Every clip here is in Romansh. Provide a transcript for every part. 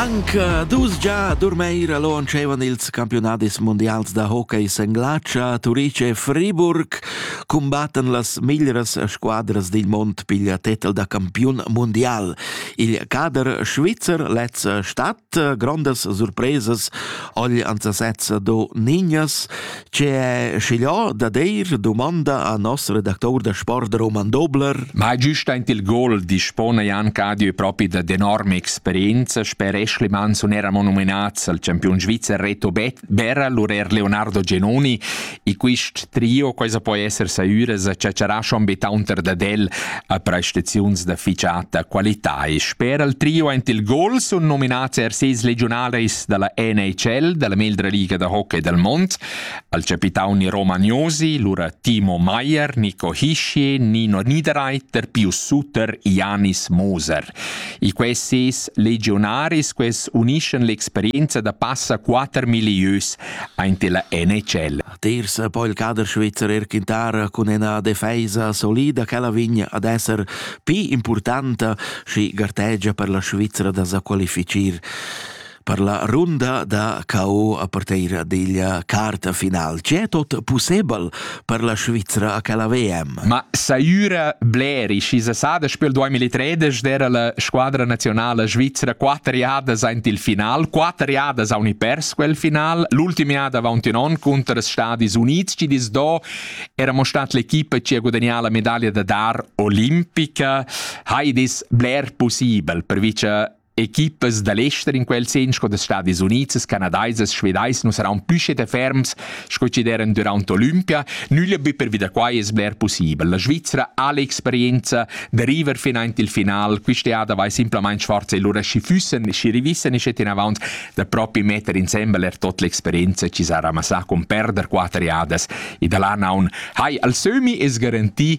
Anche dus già Durmeira launchevan ils campiunadis mundials da hockey Senglatscha, Turice e Friburg cumbattan las miglras squadras dil mond pigl tetel da campiun mundial. Il cader svizzer lez stadt grandas surpresas agli anzasezza do Niñas, che schigliò da deir domanda a nostro redactor da sport Roman Dobler. Ma giusta in il gol dispona Jan Cadio propi da d'enorme esperienza, sper Ashley Manson era monumenaz al campion svizzer Reto Berra, l'urer Leonardo Genoni E quist trio quesa poi esser saüras a ciaciarà schon be taunter dad el a prestaziuns da ficiata qualità e sper al trio aint il gol sun nominats er ses legionaris da la NHL, da la meglra liga da hockey dal mond, al capitauni Romagnosi, lura Timo Maier, Nico Hischier, Nino Niederreiter, Pius Sutter, Janis Moser. E questi ses legionaris quels uniscen l'experienza da passa quatter milieus Aint illa NHL. Terza po il cader svizzer er quintara cun ina defesa solida ch'ella vegn ad esser pli importanta schi gartegia per la Svizra da sa qualifichir per la runda da KO a parteira diglia carta final. C'è tot possibel per la Svizra a quella VM. Ma saiura bleri, schi se sa da spel 2013 era la squadra nazionale svizra quatter jadas aint il final, quatter jadas auni pers quel final, l'ultim jada avaunt un on conter els Stadis Units, ci dis do era mo stat l'equipa ci a guadagnare la medaglia da dar olimpica, hai dis bler possibel per vice Equipas da l'ester in quel sen sco da Stadis Unids, Canadaisas, Svedais nu saran püschet e ferms sco chi d'eran dürant Olympia, nüglia be pervi da quai es bler pussibel. La Svizzera ha l'experienza da river fin aint il final, quist'eada vai simplamaing forza e lura schi füssen, schi rivissen e schet inavant da propi metter insembel er tot l'experienza chi s'ha ramassà con perder quatter eadas e da l'an haun. Hai, al sömi es garantì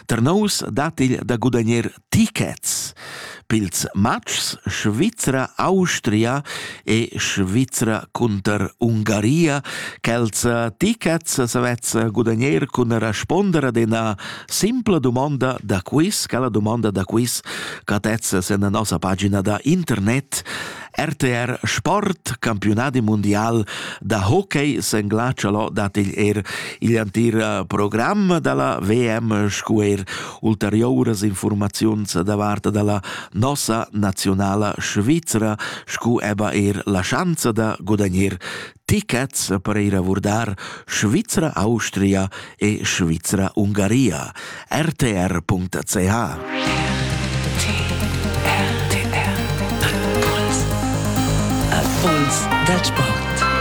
Tar nous dat igl da gudagner tickets pils matgs Svizra, Austria e Svizra cunter Ungaria. Quels tickets savez gudagner cun responder ad ina simpla dumonda da quiz, quella dumonda da quiz catezza sen la nossa pagina da internet RTR Sport, campiunadi mundial da hockey senglatschalo dat igl er igl antir eh, program dalla VM scu er ulteriouras informaziuns davart dalla nossa nazionala Svizra scu eba er la schanza da gudagnir tichets per ir a vurdar Svizra Austria e Svizra Ungaria. rtr.ch Impuls da Sport.